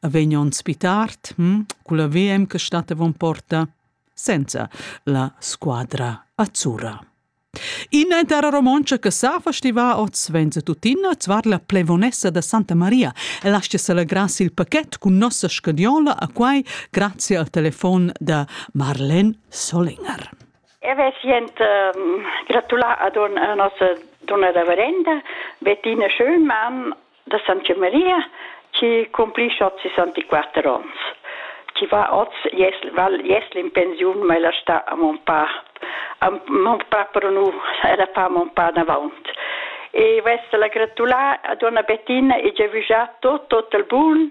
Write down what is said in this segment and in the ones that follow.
a vegn onn spitart, hm, cu la VM che stat avon porta, senza la squadra azzurra. Ina intera romontscha che sa festiva oz venza tuttina zvar la plevonessa da Santa Maria e lascia celebrar il pachet cun nossa scadiola a quai grazie al telefon da Marlen Solinger. E ve sient ehm, gratular ad un, a nossa dunna da Varenda, Bettina Schönmann da Santa Maria, chi cumplisce oz 64 ons. Chi va oz, jes, val jesl in pensiun, ma ella sta a mon pa. A mon pa pro nu, ella fa mon pa davaunt. E vesta la gratulà ad una Bettina e giavügià tot, tot il bun,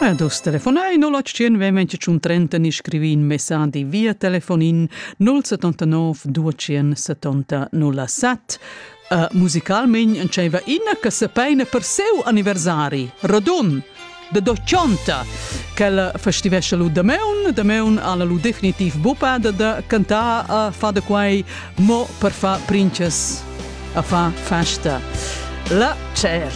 Ad oz telefonai 081 28 30 ni scrivi in messadi via telefonin 079 200 70 07. Uh, musicalmein nceva ina che sepeina per seu anniversari, Rodun, de Doccionta, quella festivesce lu da meun, da meun alla lu definitiv bupa de, de cantar a uh, fa de quai mo per fa princes a fa festa. La cer.